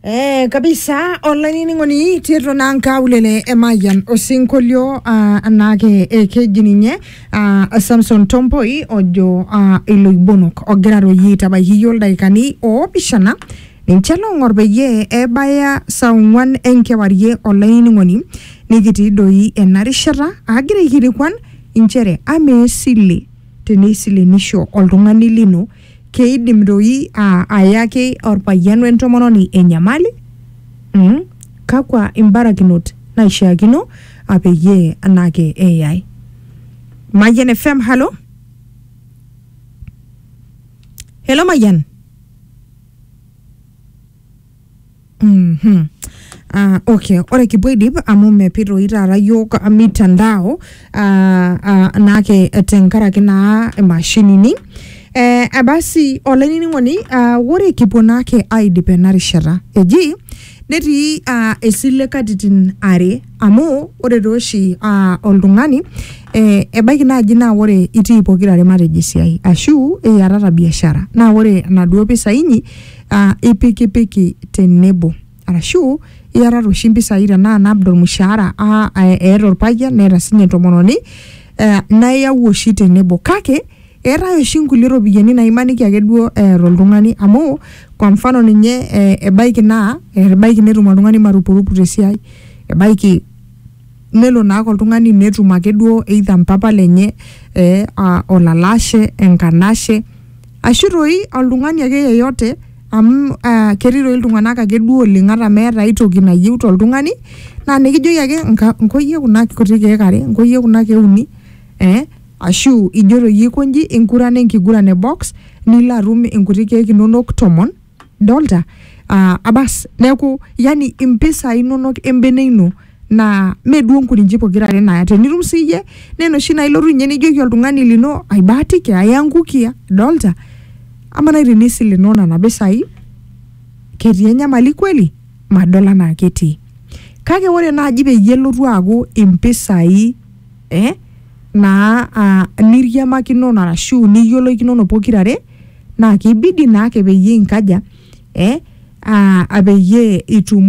Eh, kabisa olainining'oni tiatua naa nkaulele emayian osinkolio ah, anaake eh, keji ninye ah, samson tompoi ojo ah, iloibonok ogira aroyie aitabaiki iyie ildaikani oopishana ninche loong'or peyie ebaya saa ong'uan enkewarie olainining'oni nikitii doi ena rishata agira aikilikuan inchere amaa esile teneisilenisho oltung'ani lino Keidim doi aa ayaki olpayian we ntomononi enyamali? mm Kakua imbarakinot naishiakino a peyie anaake eyai? Mayian FM, halo? Helo Mayian? Mhm. Ah, okay ore kipuo aidip amu mepi toi taata yiok ah, mitandao ah, ah, naake tenkaraki naa imashinini eh, eh, basi olainining'oni ah, ore kipuo naake aidip ena rishata eji netii ah, esile katitin are amu ore tooshi ah, oltung'ani eh, ebaiki naaji naa ore itii pokirare matejo esiai ashu iyatata biashara naa ore enaduo pisai inyi uh, ipikipiki tenebo arashu iatata oshi mpisai tenaa nabda ormushaara ah, eh, eeta orpayian neeta sinye entomononi eh, nayau oshi tenebo kake eetae oshi nkulie ropiyiani naimaniki ake duo eeta oltung'ani amu kwa mfano ninye eh, ebaiki naa eh, ebaiki netum oltung'ani marupurupu tesiai ebaiki nelo naake oltung'ani netum ake duo either mpapa lenye eh, ah, olalashe enkanashe ashu toi oltung'ani ake yeyote amu uh ketii toi iltung'anak ake duo oleng ata meeta aetoki nayieu toltung'ani naa nikijoki ake nka nkoyie kuna kuti keek are nkoyie kuna keek uni eh ashu ijoto iyie aikonji ingurana enkiguran e box nilo atum inkuti keek inonok tomon. dolta uh, abas neeku yani impisai inonok embene ino naa mee duo nkurinji pokira are naya tenitum siyie naa enoshi naa ilotu ninye nijoki oltung'ani lino aibaatiki aya nkukia dolta ama nai tenisilenoo nana pisai ketii enyamali kweli madol anaa ketii kake ore naaji peyie elotu aaku impisai eh, naa uh, niriamakinono arashu niyioloikinono pokirare naa keibidi naake peyie inkaja eh, uh, apeyie itum.